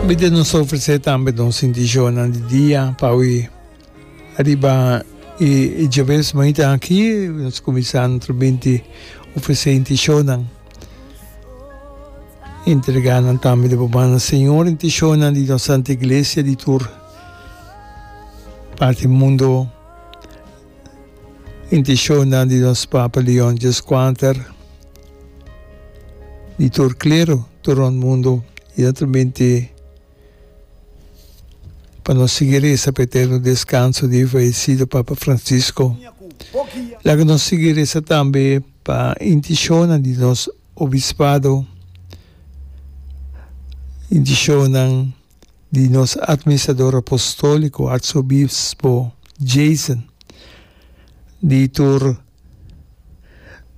Bida nos ta ofresé tambe nos sinticionnan di dia pa wi riba e e djabel semanita aki nos kuminsá nuestro binti ofresé inticionnan entregá nan tambe di Bumana Señor inticionnan di nos Santa Iglesia di tur parti mundo. Intishonnan di nos Papa Leon Xvi di tur klero tur rond mundu i ta transmiti pa nos sigui resa pa e eterno deskanso di e fayesido Papa Francisco. Laga nos sigui resa tambe pa intishonnan di nos obispado, intishonnan. di nos Administrador Apostóliko Arsobispo Jason, di tur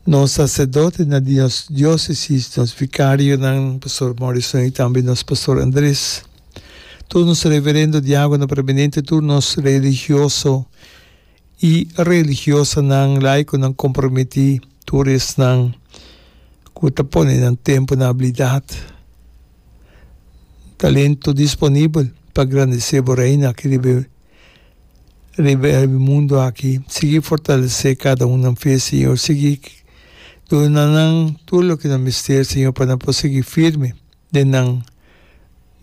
nos saserdotenan di nos diósesis, nos vikarionan, Pastor Morrison i tambe nos Pastor Andrés, tur nos reverendo, diágono preeminente, tur nos religioso i religiosonan laikonan komprometí tur esnan ku ta pone nan tempu na abilidat, talentu disponibel pa grandesé bo Reina aki riba riba e mundu aki. Sigui fortalesé kada un nan fe, Señor. Sigui duna nan tur loke nan mester, Señor, pa nan por sigui firme den nan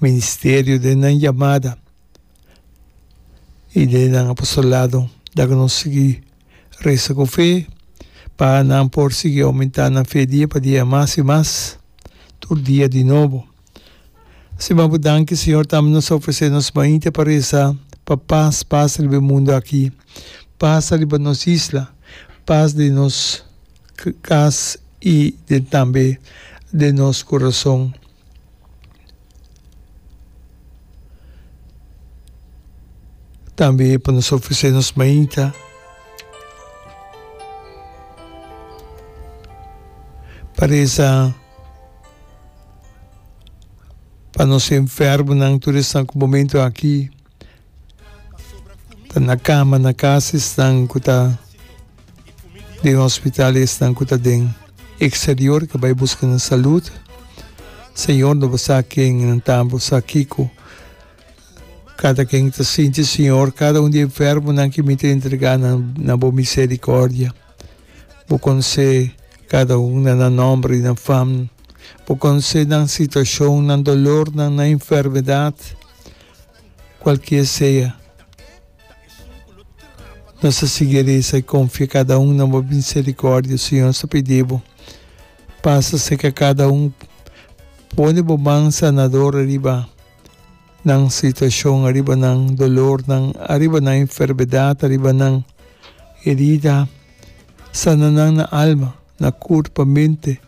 ministerio, den nan yamada, y de nan apostolado ta cu nos sigui reza cu fe pa nan por sigui aumenta nan fe dia pa dia mas y mas tur dia di nobo. Siman bo danki Señor tambe nos ta ofrece nos maite pa reza pa paz pasa riba e mundo aki, pasa riba nos isla, paz den nos cas y den tambe den nos corazon. Tambe pa nos ofresé nos mainta pa resa pa nos enfermonan, tur esnan ku momentu aki. Ta na cama na casa esnan cu ta den hospital y esnan cu ta den exterior ca bay busca nan salud Señor no bo sa ken nan ta bo sa kico cada ken ta sinti Señor cada un di e enfermonan que mi ta entrega nan na bo misericordia bo conse cada un na nan nombre y nan fam bo conse nan situacion nan dolornan nan enfermedad. Cualkier sea, nos ta sigui reza i confia cada un na bo misericordia. Señor, nos ta pidi bo, pasa cerca cada un, pone bo man sanador ariba nan situacion, ariba nan dolornan, ariba nan enfermedad, ariba nan herida. Sana nan na alma, na curpa, mente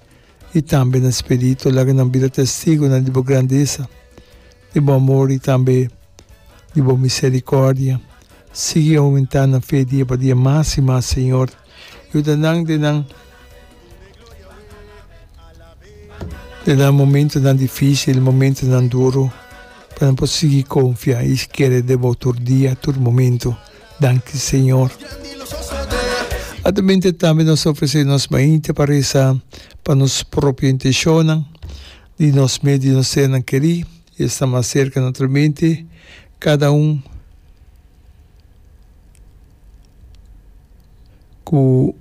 i tambe na spirito. Laga nan bira testigonan di bo grandeza. di bo amor i tambe di bo misericordia. Sigui aumenta na fe dia pa dia mas i mas, Señor. Yuda nan den nan den nan momentonan dificil, momentonan duro, pa nan por sigui confia i kere den bo tur dia, tur momento. Danki, Señor. Ademente tambe nos ofrece nos mainta pa reza pa nos propio intencionnan. Di nos mes di nos senan kerí i e sta mas serka natro mente kada un ku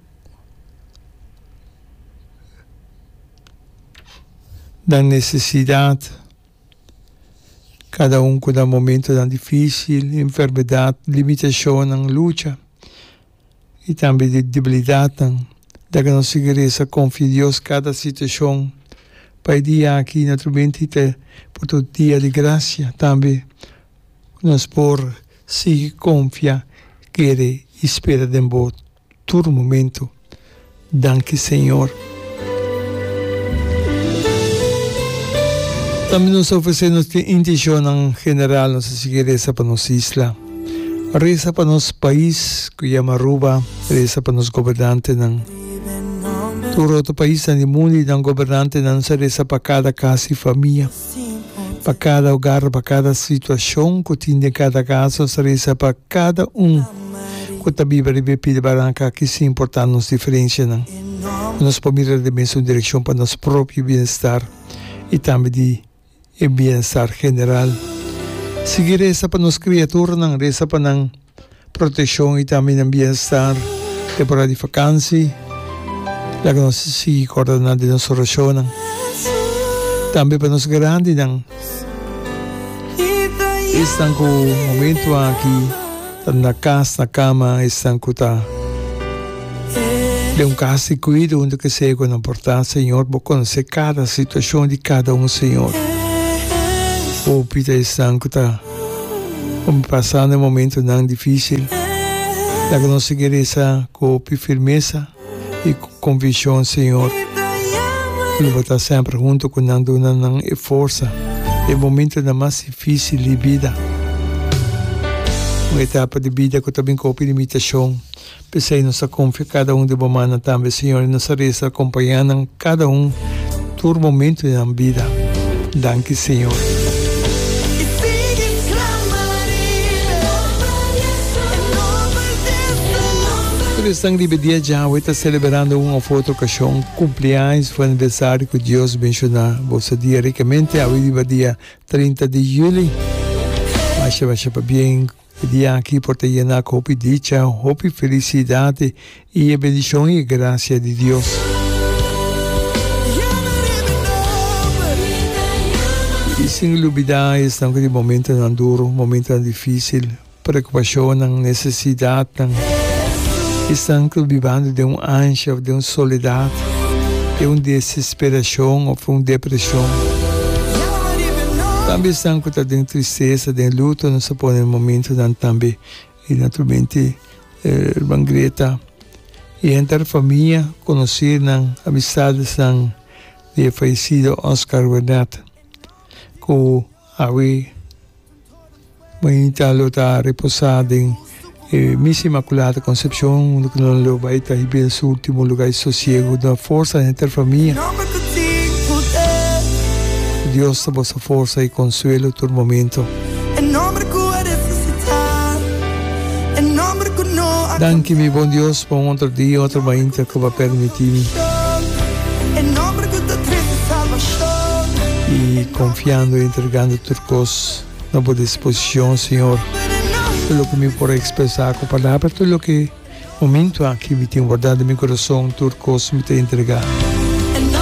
nan nesesidat, kada un ku nan momentunan difísil, enfermedat, limitashonnan, lucha. i tambe di debilidatnan. Deke nos sigui resa konfia Dios kada situashon, pa e dia aki no ta bini tita por tur dia di grasia. Tambe nos por sigui konfia, kere i spera den bo tur momentu. Danki Señor. Tambe nos ta ofresé nos tin intishonnan general, nos ta sigui resa pa nos isla, resa pa nos pais cu yama Aruba, resa pa nos gobernantenan. Tur otro paisnan di mundu y nan gobernantenan sa resa pa cada cas y famia. Pa kada ogar, pa kada situashon ku tin den kada kas, nos ta resa pa kada un ku ta biba riba e pida baranka ki sin importá nos diferenshanan. I nos por mira den mesun direkshon pa nos propio bienestar i tambe di e bienestar general. Sigui resa pa nos kriaturanan, resa pa nan. proteccion y tambe nan bienestar temporada di vacancy laga nos sigui corda nan den nos oracionnan tambe pa nos grandinan esnan cu momento aki ta na cas na cama esnan cu ta den un cas di cuido unda que sea cu nan por ta Señor bo conoce cada situacion di cada un Señor hopi ta esnan cu ta Con pasando e momentonan difícil, ta cu nos sigui reza cu hopi firmeza y cu conviccion, Señor, cu Bo ta semper hunto cu nan, duna nan e forza den e momentonan mas difícil di bida. Un etapa di bida cu ta bin cu hopi limitacion. P'esei nos ta konfia kada un di bo mannan tambe, Señor, i nos ta reza ta kompañá nan kada un tur momentu di nan bida. Danki, Señor. Tur esnan riba e dia djawe ta seleberando un òf otro okashon, kumpliaños òf aniversario ku Dios menshoná bo su dia rikamente. Awe riba dia trinta di juli. Masha, masha pabien. E dia aki por ta yena cu hopi dicha, hopi felicidad y e bendicion y e gracia di Dios. Y sin lubida esnan cu tin momentonan duro, momentonan dificil, preocupacionnan, necesidadnan. Esnan cu ta bibando den un anshi of den un soledad, den un. Desperashon of un depreshon. Tambe esnan ku ta den tristesa, den luto nos ta pone momentunan tambe. I naturalmente Herman Greta i henter famia, konosidonan, amistadesnan di e fayesido Oscar Wernat ku. Awe, Mañita lo ta reposá den e Misa Imakulada Konsepshon, unda ku nan lo bai ta hibia den su último lugá di sosiegu. Duna forsa henter famia. Ku Dios ta boso forsa i konsuelo tur momentu. Danki mi bon Dios pa un otro dia, otro mainta cu bo a permiti mi. Y confiando y entregando tur cos na bo disposicion, Señor. Tur loke mi por a expresa cu palabra, tur loke momento aki mi tin wardado mi corazon, tur cos mi ta entrega.